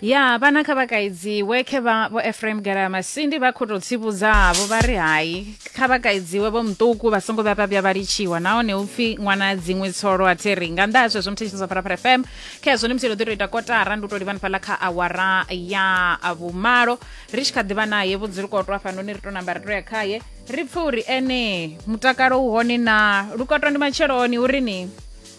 ya vhana kha vhakaidziwe khe vha vho efraim garama sindi vha khou tou tsivhudzavho vha ri hai kha vhakaidziwe vho muṱuku vha songo vhuya vha vhuya vha litshiwa nahone hu pfi ṅwana dziṅwe tsolo a theri nga nnḓa ha zwezwo muthetshiso zwa pharapara fm kha hezwo ni musi ro ḓi tou ita kotara ndi u tou livhani fhaḽa kha awara ya vhumalo ri tshi kha ḓivha naye vhudzulukotwa hafhanoni ri tou namba ri tou ya khaye ri pfe uri ene mutakalo u hone na lukotwa ndi matsheloni uri ni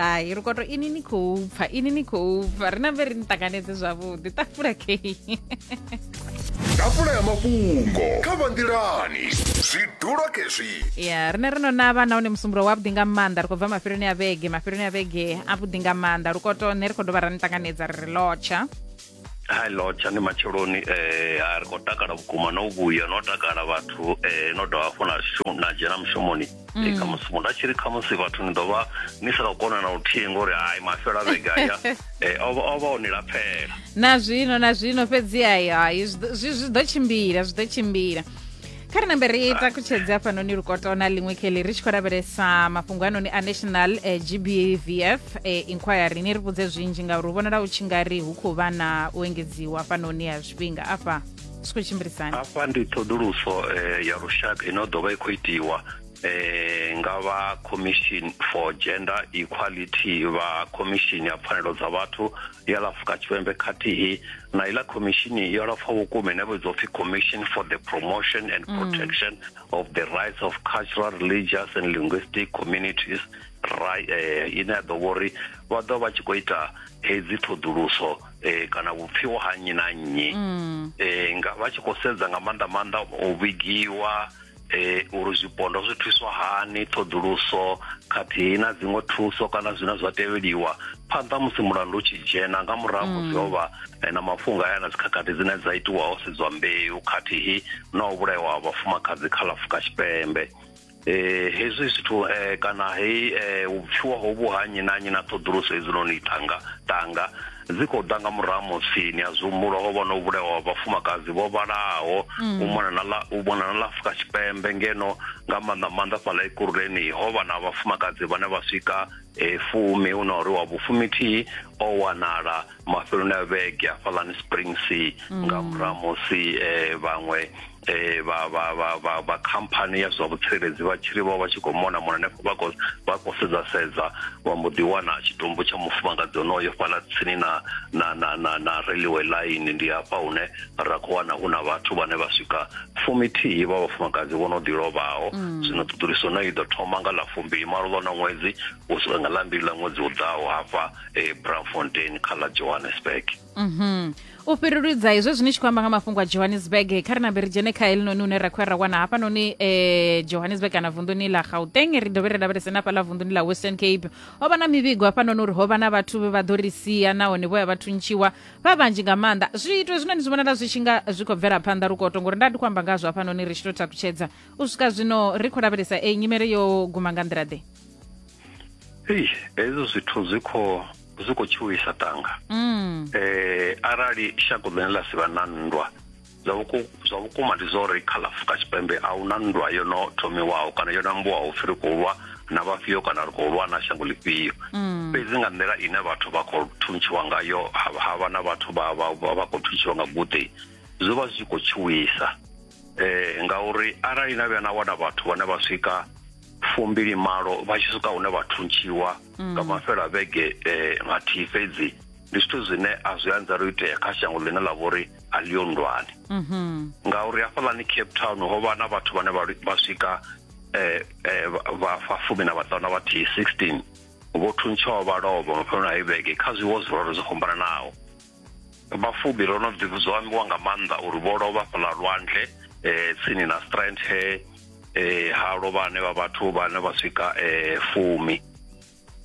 hai ri koto ini ni khou pfa ini ni khou pfa ri nambe ri ni ṱanganedze zwavhuḓi ṱafula kei ḓafula ya mafhungo kha vhanḓilani zwi dula khezwi ya rine ri no navha nahone musumbulo wavhuḓi nga maanḓa ri khou bva mafheloni a vhege mafheloni a vhege avhuḓi nga maanḓa lukoto nṋe ri khou dovha ra ni ṱanganedza ri ri lotsha hai lotsha ndi matsheloni eh ha ri khou takala vhukuma no vhuya no takala vhathu eh no dovha hafhu na shu- na dzhena mushumoni Eh, khamusi muthu a tshi ri khamusi vhathu ni ḓovha ni sa khou kona na luthihi ngori hai mafhelo a vhege aya eh, o vha- o vha o ni lapfela na zwino na zwino fhedzi ayo ayo zwi ḓo- zwi zwi ḓo tshimbila zwi ḓo tshimbila kha ri nambe ri takutshedze hafhanoni lukotona ḽiṅwe kheli ri tshi khou lavhelesa mafhungo anoni a national eh, gbvf eh, inquiry ni ri vhudze zwinzhi ngauri hu vhonala u tshi nga ri hu khou vha na u engedziwa hafhanoni ha zwifhinga afha zwi khou tshimbilisani afha ndi ṱhoḓuluso eh, ya lushaka ino ḓo vha i khou itiwa eh, nga vha commission for gender equality vha commission ya pfanelo dza vhathu ya la Afurika Tshipembe khathihi na iḽa khomishini yo lapfa vhukuma ine vhidzwa upfi Commission for the Promotion and mm. Protection mm. of the Rights of Cultural, Religious and Linguistic Communities right eh, ine ya ḓo vhori vha ḓo vha tshi khou ita hedzi ṱhoḓuluso eh, kana vhupfiwa ha nnyi na nnyi mm. eh, nga vha tshi khou sedza nga maanḓa maanḓa u vhigiwa e, uri zwipondwa zwi thuswa hani ṱhoḓuluso khathihi na dziṅwe thuso kana zwine zwa tevheliwa phanḓa musi mulandu u tshi dzhena nga murahu mm. musi ho vha e, na mafhungo aya na dzikhakhathi dzine dza itiwa ho sedzwa mbeu khathihi na u vhulaiwa ha vhafumakadzi kha ḽa fuka tshipembe eh hezwi zwithu eh kana hei eh vhupfiwa hovhu ha nnyi na nnyi na ṱhoḓuluso hedzinoni tanga tanga dzi khou ḓa nga murahu musi ni a zwi humbula ho vha no vhulawa vhafumakadzi vho vhalaho mm. u mona na ḽa u mona na ḽa Afrika Tshipembe ngeno nga maanḓa maanḓa fhaḽa Ekurhuleni ho vha na vhafumakadzi vhane vha swika e fumi hu na uri wa vhufumithihi o wanala mafheloni a vhege hafhaḽani Springs mm. nga murahu musi eh, vhaṅwe eh vha vha vha vha vha company ya zwa vhutsireledzi vha tshiri vha vha tshi kho mona mona ne vha kho vha kho sedza sedza wa mbo ḓi wana tshitumbu tsha mufumakadzi onoyo fhala tsini na na na na na railway line ndi hafha hune ra kho wana hu na vhathu vhane vha swika fumithihi vha vhafumakadzi vho no ḓi lovhaho mm. zwino ṱuṱuliso no i ḓo thoma nga ḽa fumbili malo ḽo na ṅwedzi u swika nga ḽa mbili ḽa ṅwedzi u ḓaho hafha e eh, Braamfontein kha ḽa Johannesburg Mhm. u fhiruludza hezwo zwine tshi khou amba nga mafhungo a johannesburg kha ri nambe ri dzhene kha helinoni une ra khou ya ra wana hafhanoni eh, johannesburg kana vunḓuni ḽa gauteng ri dovhe ri lavhelese na fhaḽa vunḓuni ḽa western cape ho vha na mivhigo hafhanoni uri ho vha na vhathu vhe vha ḓo ri sia nahone vho ya vha thuntshiwa vha vhanzhi nga maanḓa zwiito hezwinoni zwi vhonala zwi tshi nga zwi khou bvela phanḓa lukoto ngori nda ndi khou amba ngazwo hafhanoni ri tshi tou takutshedza u swika zwino ri khou lavhelesa e nyimele yo guma nga nḓila ḓe Eish, hezwo zwithu zwi khou zwi khou tshuwisa tanga Mm. eh arali shango ḽine ḽa si vha na nndwa zwa vhuku- zwa vhukuma ndi zwa uri kha ḽa afurika tshipembe a huna nndwa yo no thomiwaho kana yo nambuwaho pfi ri khou lwa na vhafhio kana ri khou lwa na shango ḽifhio Mm. fhedzi nga nḓila ine vhathu vha khou thuntshiwa ngayo ha ha vha na vhathu vha vha vha- vha khou thuntshiwa nga guṱe zwo vha zwi khou tshuwisa eh ngauri arali na vhuya na wana vhathu vhane vha swika fumbili malo vha tshi swika hune vha thuntshiwa mm. nga mafhela vhege eh, nga thihi fhedzi ndi zwithu zwine a zwi anzela u itea kha shango ḽine ḽa vha uri a ḽiyo ndwani mm-hmm. ngauri hafhaḽani cape town ho vha na vhathu vhane vha swika eh, eh, vha fumi na vhaṱanu na vhathihi 16 vho thuntshaho vha lovha mafheloni a ivhege kha zwiwo zwiroro zwo fhambananaho vhafumi ro no zwo ambiwa nga maanḓa uri vho lovha fhaḽa lwanzhe um tsini na strand he um ha lovha ane vha vhathu vhane vha swika um fumi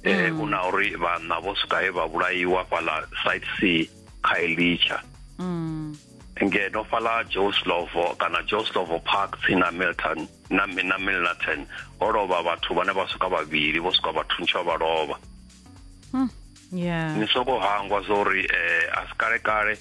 um eh, mm. u na uri vhanna vho swika he vha vhulaiwa fhaḽa site c kha elicha mm. ngeno fhaḽa joslovo kana joslovo park tsini na milton na na milnerton ho lovha vhathu vhane vha swika vhavhili vho swika vhathu ntshwa vha lovha hmm. yeah. ni soko hangwa zwa uri eh, a si kale kale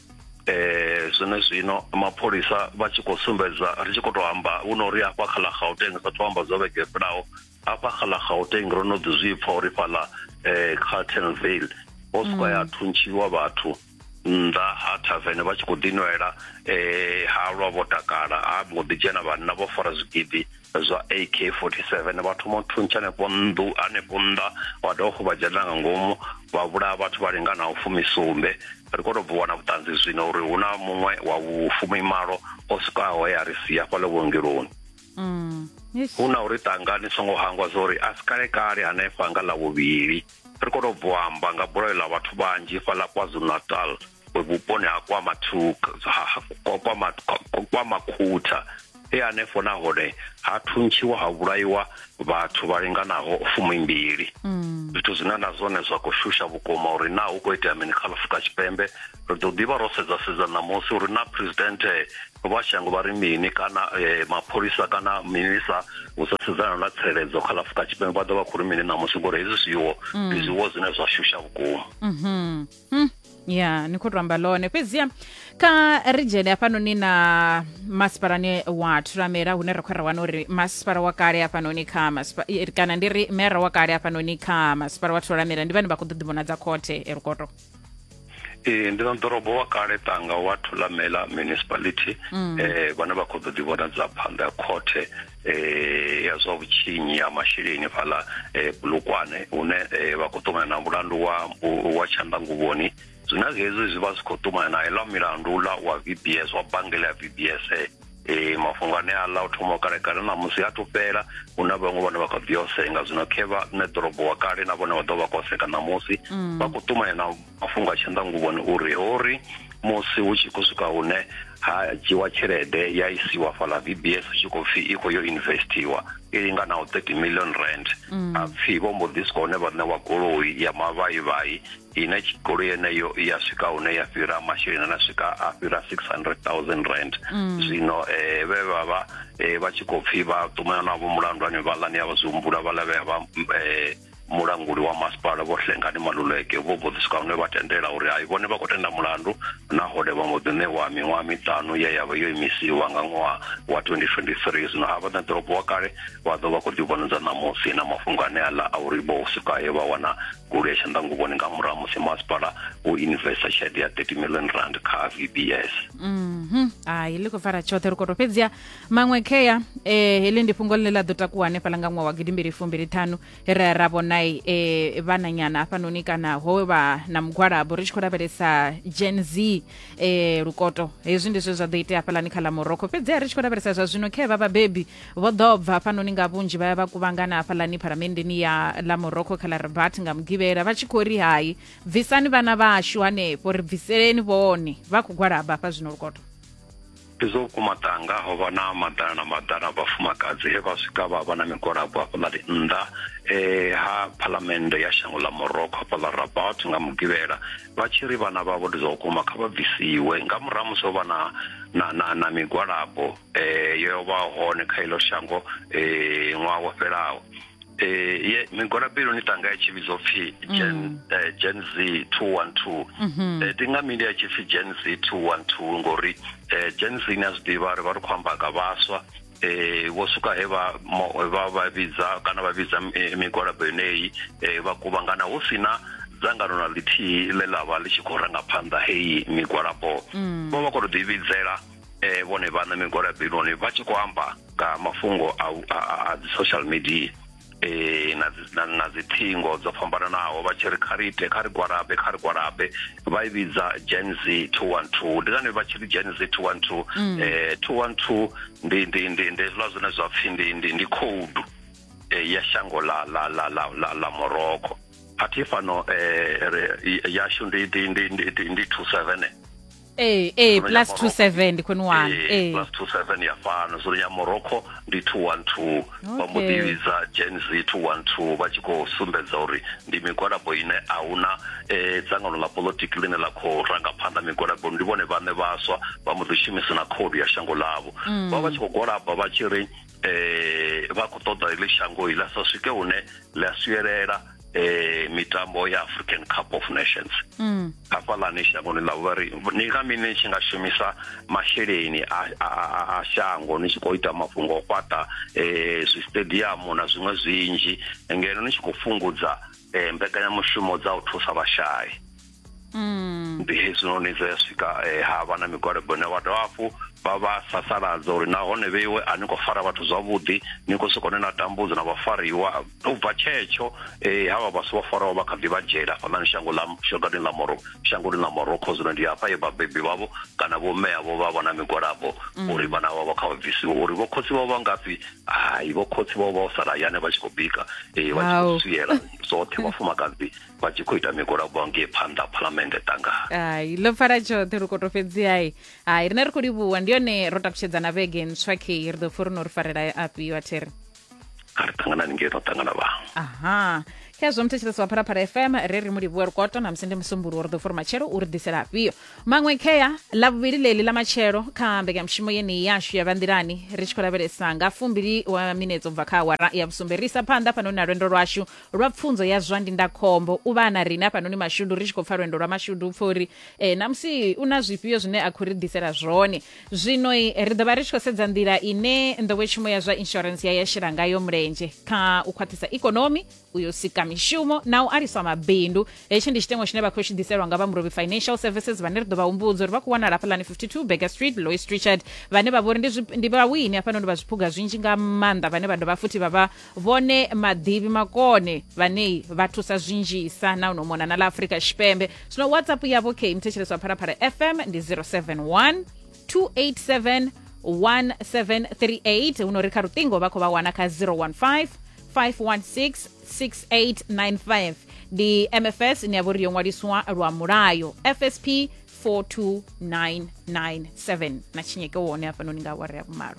eh zwone zwino mapholisa vha tshi khou sumbedza ri tshi khou tou amba hu no uri hafha kha ḽa gauteng sa thu amba zwo vhege fhilaho hafha kha ḽa gauteng ro no ḓi zwi pfa uri fhaḽa um kha tenvale ho sika ya thuntshiwa vhathu mm. nnḓa ha thavene vha tshi khou ḓinwela um eh, halwa vho takala ha mbo ḓi dzhena vhanna vho fara zwigidi zwa ak 47 vha thoma u thuntsha hanefho nnḓu hanefho nnḓa wa dovha fo vha dzhena nga ngomu vha vhulaya vhathu vha linganaho fumisumbe ri khou tou bvuwa na vhuṱanzi zwino uri hu na muṅwe wa vhufumimalo o swikaho ya ri sia fhale vhuongeloni mm. hu na uri ṱangani songo hangwa zwa uri a si kale kale hanefha nga ḽa vhuvhili Ri khou tou bva u amba nga bulayo ḽa vhathu vhanzhi fhaḽa KwaZulu-Natal vhuponi ha KwaMakhutha e hanefho nahone ha thuntshiwa ha vhulaiwa vhathu vha linganaho fumi mbili. Zwithu zwine na zwone zwa khou shusha vhukuma uri naa hu khou itea mini kha ḽa Afurika Tshipembe. ri ḓo ḓivha ro sedza sedza ṋamusi uri na president eh, vha shango vha ri mini kana eh, mapholisa kana minisa u sa sedzana na tsireledzo kha lafuka tshipembe vha ḓo vha khou ri mini ṋamusi ngori hezwi zwiwo mm. ndi zwiwo zwine zwa shusha vhukuma mhm. mm. ya ni khou tou amba ḽone fhedziha kha ri dzhene hafhanoni na masipalani wa thuramela hune ra khou ra wana uri masipala wa kale hafhanoni kha kana ndi ri mera wa kale hafhanoni kha masipala wa thuramela ndi vhane vha khou ḓo ḓivhonadza khothe erukoto ee ndi na ḓorobo wa kale tanga wa thulamela municipality mm. eh vhane vha khou ḓo ḓi vhona dza phanḓa khothe eh ya zwa vhutshinyi ya masheleni fhaḽa eh bulukwane hune eh, vha khou ṱumana na mulandu wa wa tshandanguvhoni zwina hezwi zwi vha zwi khou ṱumana na iḽa milandu ḽa wa VBS wa bangela ya VBS e mafhungo ane a ḽa u thoma u kalekale na musi a tufhela hu na vhaṅwe vhane vha kha ḓi osenga zwino khevha nṋe ḓorobo wa kale na vhone vha ḓo vha khou oseka ṋamusi mm. vha khou ṱumanya na mafhungo a tshanḓanguvhoni uri ho ri musi hu tshi khou swika hune ha dzhiwa tshelede ya isiwa fhaḽa v b s hu tshi khou pfhi i khou yo investiwa i linganaho 30 million rand mm. a pfhi vho mbo ḓi swika hune vha ṋewa goloi ya mavhaivhai ine goloi yeneyo i ya swika hune ya fhira masheleni ane a swika a fhira 600000 rand zwino eh, vhe vha vha eh, vha tshi khou pfhi vha ṱumana navho mulandu ane vhaḽani ya vha zwi humbula vha lavhea vha eh, mulanguli wa masipala vho hlengani maluleke vho mbo ḓi swika hune vha tendela uri hai vhone vha khou tenda mulandu nahone vha mbo ḓi ṋewa miṅwaha miṱanu ye ya vha yo imisiwa nga ṅwaha wa 2023 zwino ha vha na ḓorobo wa kale vha ḓo vha khou ḓivhonodza ṋamusi na mafhungo ane aḽa a uri vho swika he vha wana goloi ya tshanḓanguvhoni nga murahu ha musi masipala wo investa tshelede ya 30 million rand kha vbs Mhm. hai ḽi khou pfala tshoṱhe ri koto fhedziha maṅwe khea eh, heḽi ndi fhungo ḽine ḽa ḓo takuwa hanefhaḽa nga ṅwaha wa gidimbili fumbili ṱhanu ra ra vhonai eh, vhananyana hafhanoni kana ho vha na mugwalabo ri tshi khou lavhelesa gen z eh, lukoto hezwi ndi zwe zwa ḓo itea hafhaḽani kha ḽa morocco fhedziha ri tshi khou lavhelesa zwa zwino khea vha vhabebi vho ḓo bva hafhanoni nga vhunzhi vha ya vha kuvhangana hafhaḽani pharamendeni ya ḽa morocco kha ḽa rabat nga mugivhela vha tshi khou ri hai bvisani vhana vhashu hanefho ri bviseleni vhone vha khou gwalaba hafha zwino lukoto zwo vhukuma tanga ho vha na maḓana na maḓana vhafumakadzi he vha swika vha vha na migwalabo hafhaḽani nnḓa eh ha phalamennde ya shango ḽa morocco hafha ḽa rabat nga mugivhela vha tshi ri vhana vhavho ndi zwa vhukuma kha vha bvisiwe nga murahu musi ho vha na na na na migwalabo eh, yo vha hone kha ilo shango eh, ṅwaha wo fhelaho eh, ye migwalabelo ni tanga ya tshivhidzo pfi gen, eh, gen z 212 eh, ndi nga mini ya tshipfi gen z 212 ngori eh, gen z ni a zwi ḓivha ri vha ri khou amba nga vhaswa eh vho suka he vha mo- vha vha vhidza kana vha vhidza eh, migwalabo yeneyi eh, vha kuvhangana hu si na dzangano na ḽithihi ḽe ḽa vha ḽi tshi khou ranga phanḓa heyi migwalabo vho vha khou tou ḓivhidzela eh, vhone vhaṋe migwalabeloni vha tshi khou amba nga mafhungo a, a, a, a dzi social media eh na dzi- na- na dzi thingo dzo fhambananaho vha tshi ri kha ri ite kha ri gwalabe kha ri gwalabe vha i vhidza gen z 212 ndi ngani vha tshi ri gen z 212 eh 212 ndi ndi ndi ndi hezwiḽa zwine zwa pfhi ndi ndi ndi code eh, ya shango la la la la la, la Morocco athi fano eh re- i- yashu ndi ndi ndi ndi, ndi 27 ee ee plus two seven ndi khwene wani ee plus two seven ya fhano zwino ya morocco ndi two one two vha mbo ḓi vhidza gen z two one two vha tshi khou sumbedza uri ndi migwalabo ine a hu na um dzangano ḽa polotiki ḽine ḽa khou ranga phanḓa migwalabo ndi vhone vhaṋe vhaswa vha mbo ḓi shumisa na khoudu ya shango ḽavho mm. vha vha tshi khou gwalaba vha tshi ri eh, vha khou ṱoḓa heḽi shango ila sa swike hune ḽi a swiyelela eh mitambo ya African Cup of Nations mm. hafhaḽani shangoni ḽa vhari ni nga mini ni tshi nga shumisa masheleni a, a, a, a shango ni tshi khou ita mafhungo o fhaṱa eh zwistadiamu na zwiṅwe zwinzhi ngeno ni tshi khou fhungudza eh mbekanyamushumo dza u thusa vhashai ndi hezwinoni zwe ya swika eh, ha vha na migwalabo ine vha dovha hafhu vha vha sasaladza uri nahone vheiwe a ni khou fara vhathu zwavhuḓi ni khou sokou ni na tambudzo na vhafariwa u bva tshetsho eh, havha vhasi vho faraho vha kha ḓi vha dzhela hafhanani shango ḽa shangoni ḽa moro shangoni ḽa morocco zwino ndi hafha ye vhabebi vhavho kana vho mme avho vha vha na migwalabo uri vhana vhavho kha vha bvisiwe uri vho khotsi vhavho vha ngafhi hai vho khotsi vhavho vha u sala hayani vha tshi khou bika eh, vha tshi Hau. khou swiela zwoṱhe vhafumakadzi vha tshi khou ita migwalabo ngei phanḓa phalamennde tanga hai ḽo pfala tshoṱhe ri koto fhedzi hai hai rine ri khou livhuwa ndi yone ro takutshedzana vhege ntswa kei ri ḓo pfha uri no ri farela afhio a thiri kha ri ṱanganani ngei no ṱangana vha aha khezwo muthetshelesi wa phalaphala fm re ri mulivhuwa lukoto na musi ndi musumbulu uri ḓo fori matshelo uri ḓisela afhio maṅwe khea ḽa vhuvhili ḽeli ḽa matshelo kha mbekanyamushumo yeneyi yashu ya vhanḓilani ri tshi khou lavhelesa nga fumbili wa minetse u bva kha awara ya vhusumbe ri isa phanḓa fhano na lwendo lwashu lwa pfunzo ya zwa ndindakhombo u vha na riṋe hafhanoni mashudu ri tshi khou pfa lwendo lwa mashudu pfa uri eh, namusi u na zwifhio zwine a khou ri ḓisela zwone zwino ri ḓo vha ri tshi khou sedza nḓila ine nḓowetshumo ya zwa insurance ya ya shela ngayo mulenzhe kha u khwaṱhisa ikonomi u yo sika mishumo na u aliswa mabindu hetshi ndi tshitengo tshine vha khou tshi ḓiselwa nga vha murobi financial services vhane ri ḓo vha humbudza uri vha khou wanala hafhaḽani 52 beger street lois richard vhane vha vhori ndi vhawini hafhanoni vha zwiphuga zwinzhi nga maanḓa vhane vha dovha futhi vha vha vhone maḓivhi makone vhane vha thusa zwinzhisa na uno mona na ḽa afurika tshipembe zwino whatsapp yavho khe mthetshelesi wa phalaphala fm ndi 071 287 1738 huno ri kha luṱingo vha khou vha wana kha 015 516 6895 ndi mfs ine ya vho ri yo ṅwaliswa lwa mulayo fsp 42997 na tshinyeke wone hafhanoni nga awara ya vhumalo